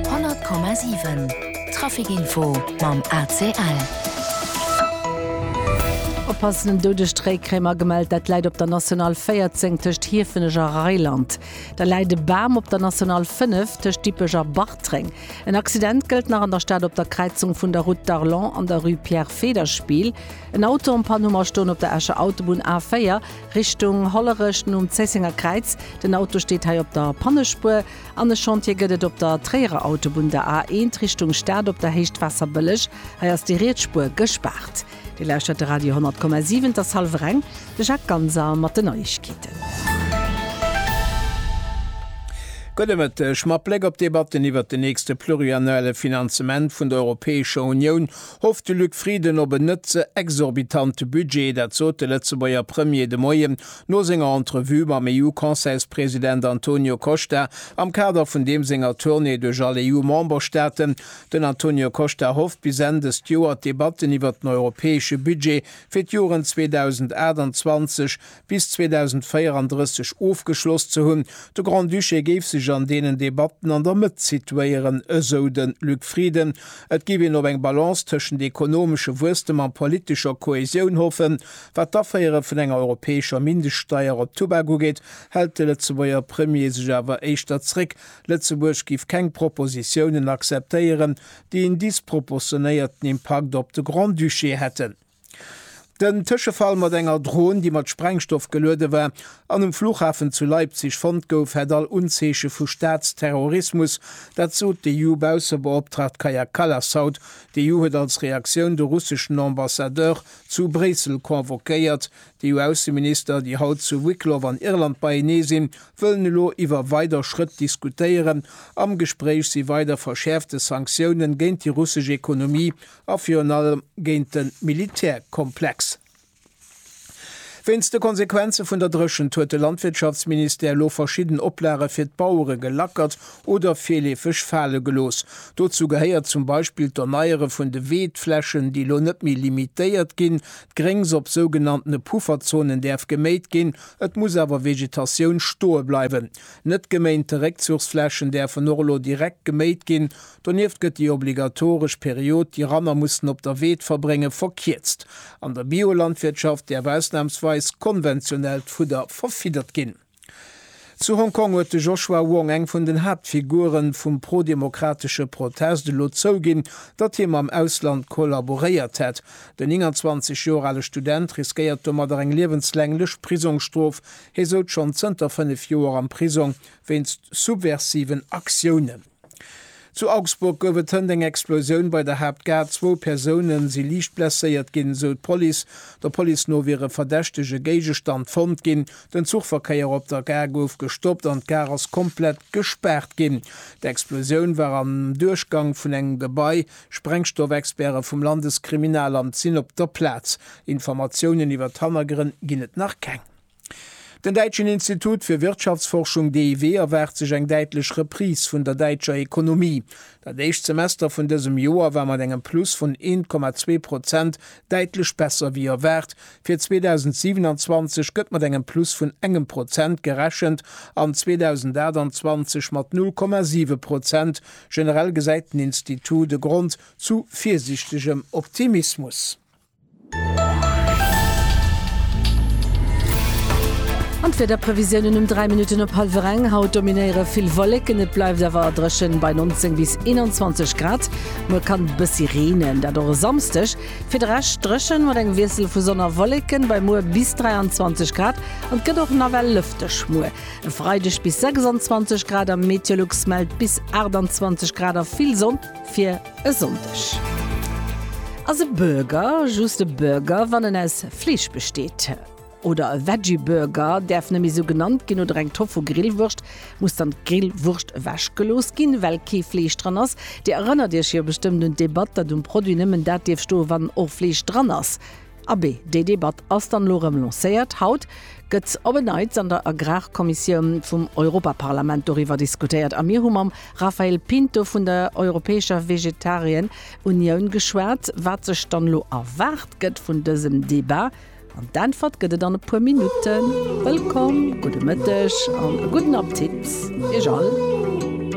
100,7 Traficinfo mam ACL. Oppassen, en doudegt Réikrämer gemellt. Dat läit op der National 14 tëscht Hiefenech a Reiland. Da läit e Bam op der National 5 tëscht Dippech a Bartreng. En Accident gëllt nach an der Stad op der Kräizung vun der Route d'Arlon an der Rue Pierre Federspiel. En Auto an Panne um a stoen op der Escher Autobunn A4. Richtung Hollerech nom Zéissenger Kräiz. Den Auto steet hei op der Pannespuer an e Chantier gëtt et op der Tréierer Autobunn, der A 1 Richtung Stad op der Héicht Waasserbëlleg. Hei ass déi riets Spuer gespaart. Dir lauschtert de Radio 10,7, et ass hallwer eng. De Jacques Ganser mat den Neiegkeeten. Gudde Mëtteg. Mat Bléck op d'Debatten iwwert den nächste pluriannuelle Finanzement vun der Europäescher Unioun Hofft de Luc Frieden op en net ze exorbitante Budget? Dat sot de Lëtzebuerger Premier de Moien no senger Entrevue mam EU-Conseilspresident Antonio Costa am Kader vun deem senger Tournée duerch all EU-Memberstaaten. Den Antonio Costa hofft bis Enn dëst Joer d'Debatten iwwert den europäesche Budget fir d'Joren 2028, bis 2034 ofgeschloss ze hunn. De Grand-Duché géif sech an deenen Debatten an der Mëtt situéieren, esou de Luc Frieden. Et géif een op eng Balance tëschent ekonomesche Wuesstem a politescher Kohäsioun hoffen. Wat d'Aféiere vun enger europäescher Mindeststeier op Tubak ugeet, hält de Lëtzebuerger Premier sech awer éischter zréck. Lëtzebuerg géif keng Propositiounen acceptéieren, déi en disproportionéierten Impakt op de Grand-Duché hätten. Den Tëschefall mat enger Dron, déi mat Sprengstoff geluede war an um Flughafen zu Leipzig fonnt gouf, hätt all Unzeeche vu Staatsterrorismus. Dat sot d'EU-Baussebeoptraagt Kaja Kallas haut. D'EU huet als Reaktioun de russeschen Ambassadeur zu Bréissel convoquéiert. D'EU-Ausseminister, déi haut zu Wicklow an Irland beienee sinn, wëllen elo iwwer weider Schrëtt diskutéieren. Am Gespréich si weider verschäerfte Sanktioune géint déi russesch Ekonomie a virun allem géint de Militärkomplex. Wéinst de Konsequenze vun der Dréchent huet de Landwirtschaftsministère elo verschidden Oplage fir d'Bauere gelackert oder virleefeg fale gelooss. Dozou gehéiert zum Beispill d'Erneiere vun de Weedflächen, déi elo net méi limitéiert ginn. D'Gréngs op sougenanntene Pufferzonen däerf geméit ginn, et muss awer Vegetatioun stoe bleiwen. Net geméinte Réckzuchsflächen däerfen och elo direkt geméit ginn, Donieft gëtt déi obligatoresch Period, déi Ranner mussen op der Weed verbréngen, verkierzt. An der Biolandwirtschaft däerf ausnamsweis konventionellt Fudder verfiddert ginn. Zu Hong Kong huet de Joshua Wong, eng vun den Haaptfigure vum prodemokratesche Protest, elo zouginn, datt hie mam Ausland kollaboréiert hätt. Den 29 Joer ale Student riskéiert domadder eng liewenslänglech Prisongsstrof. Hie souz schonn zënter fënnef Joer am Prisong wéinst subversiven Aktiounen. Zu Augsburg gouf et hënt eng Explosioun bei der Haaptgare. Zwou Persoune si liicht blesséiert ginn, sou d'Police. Der Police no wier e verdächtege Géigestand fonnt ginn. Den Zuchverkéier op der Gare gouf gestoppt an d'Gare ass komplett gespaart ginn. D'Explosioun war am Duerchgang vun engem Gebai. Sprengstoffexperte vum Landeskriminalamt sinn op der Plaz. Informatiounen iwwer d'Hannergrënn ginn et nach keng. Den däitschen Institut fir Wirtschaftsforschung DIW erwaart sech eng däitlech Reprise vun der däitscher Ekonomie. Dat éischt Semester vun dësem Joer war mat engem Plus vun 1,2 Prozent däitlech besser wéi erwaart. Fir 2027 gëtt mat engem Plus vun engem Prozent gerechent an 2028 mat 0,7 Prozent. Generell gesäit den Institut e Grond zu virsiichtegem Optimismus. An d'Wiederprevisiounen um 3 Minutten op hallwer eng, Haut dominéiere vill Wolleken, et bleift awer dréchen bei 19 bis 21 Grad. Muer kann et e bëssi reenen, dat och e Samsdeg. Fir de Rescht dréchen, mat engem Wiessel vu Sonn a Wolleken bei muer bis 23 Grad an et gëtt och nawell lëfteg. Muer e Freideg bis 26 Grad a Meteolux mellt bis 28 Grad a vill Sonn fir. E Sonndeg ass e Burger just e Burger, wann en aus Fleesch besteet. Oder e Veggie Burger däerf nëmme sou genannt ginn, oder eng Tofu Grillwurscht muss dann d'Grillwurscht ewech gelooss ginn, well kee Fleesch dran ass. Dir erënnert iech jo bestëmmt un d'Debatt, datt um Produit nëmmen dat dierf stoen, wann och Fleesch dran ass. Abee, déi Debatt ass dann elo erëm lancéiert. Haut gëtt op en Neits an der Agrarkommissioun vum Europaparlament doriwwer diskutéiert a mir hu mam Raphael Pinto vun der Europäescher Vegetarien Unioun geschwat, wat sech dann elo erwaart gëtt vun dësem Debat. An d'Äntwert gëtt et an e puer Minutten. Wëllkomm, gudde Mëtteg an e gudden Appetit Iech all.